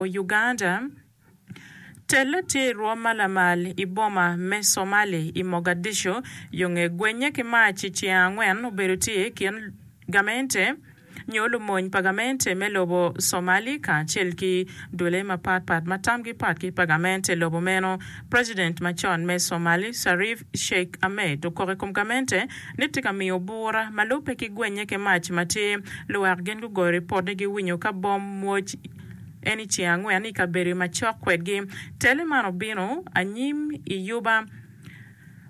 Uganda, Tel laterwa ma lamal i boma me Somali i Mogadishu yo nge gwenye ki mac i tyeng angwen obedo tye i kin gamente nyo lumony pa gamente me lobo Somali kacel ki dole mapat pat ma tamgi pat ki pa gamente lobo meno. President macon me Somali Sharif Sheikh Ahmed okok i kom gamente ni tye ka miyo bura ma lubbe ki gwenye ki mac ma tye. Luwek gin gugoyo ripot ni giwinyo ka bom mwoc. En i ceng angwen i kabedo macok kwedgi. Tele man obino anyim i yuba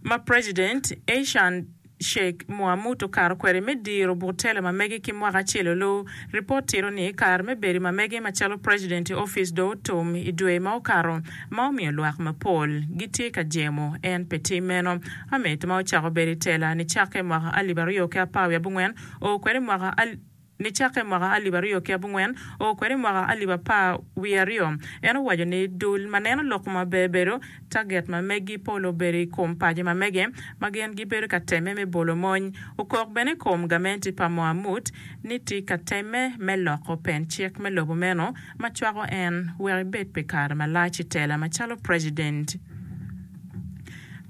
ma President Eishan Sheikh Mohamud okato kwede me diro but tele ma mege ki mwaka acel olu. Ripot tito ni kare me bedo ma mege macalo President i ofice dong otum i dwe ma okato ma omiyo lwak mapol gitye ka jemo en pe tim meno. Ahmed ma ocako bedo i tela nicakke mwaka alip aryo ki apar wiye abongwen oo kwede mwaka Nicakke mwaka alip aryo ki abongwen oo kwede i mwaka alip apar wiye aryo, en owaco ni dul ma neno lok ma ber bedo taget ma megi pol obedo i kom paco ma mege ma gin gibedo ka temme me bolo mony. Okok bene i kom gamente pa Mohamud ni tye ka temme me loko pen cik me lobo meno ma cwako en wek ebed pi kare malac i tela macalo president.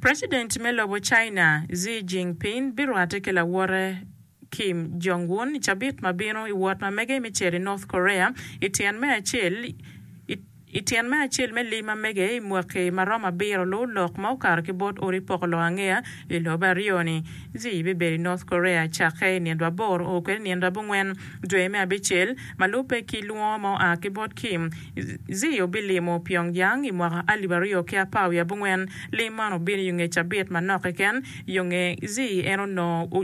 President me lobo China, Xi Jinping birwate ki lawote. Kim Jong Un i cabit ma bino i wot ma mege me cito i North Korea i tyen me acel i tyen me acel me lim ma mege i mwaki ma romo abiro luu lok ma okato ki bot odi poko lok angeya i lobo aryo ni. Xi bibedo i North Korea cakke i nino aboro oo kwede nino abongwen dwe me abicel ma lubbe ki lwongo ma oa ki bot Kim. Xi obilimo Pyongyang i mwaka alip aryo ki apar wiye abongwen. Lim man obino i nge cabit manok keken yo nge Xi en onongo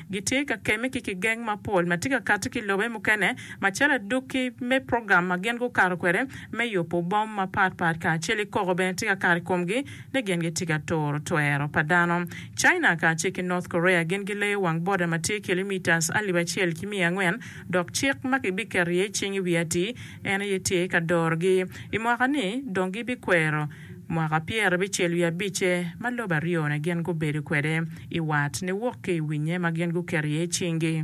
Gitye ka kemme ki kigeng mapol ma tye ka kati ki lobe mukene, macalo adwoki me program ma gin gukato kwede me yubo bom mapat pat kacel ki koko bene tye ka kato i komgi ni gin gitye ka turo twero pa dano. China kacel ki North Korea gin gileyo wang boda ma tye kilometres alip acel ki miya angwen dok cik ma kibiketo iye cing i wiye atir en aye tye ka dorogi. I mwaka ni dong gibikwero Mwaka pyera bicel wiye abicce ma lobo aryo-ni gin gubedo kwede i wat, niwok ki i winnye ma gin guketo iye cinggi.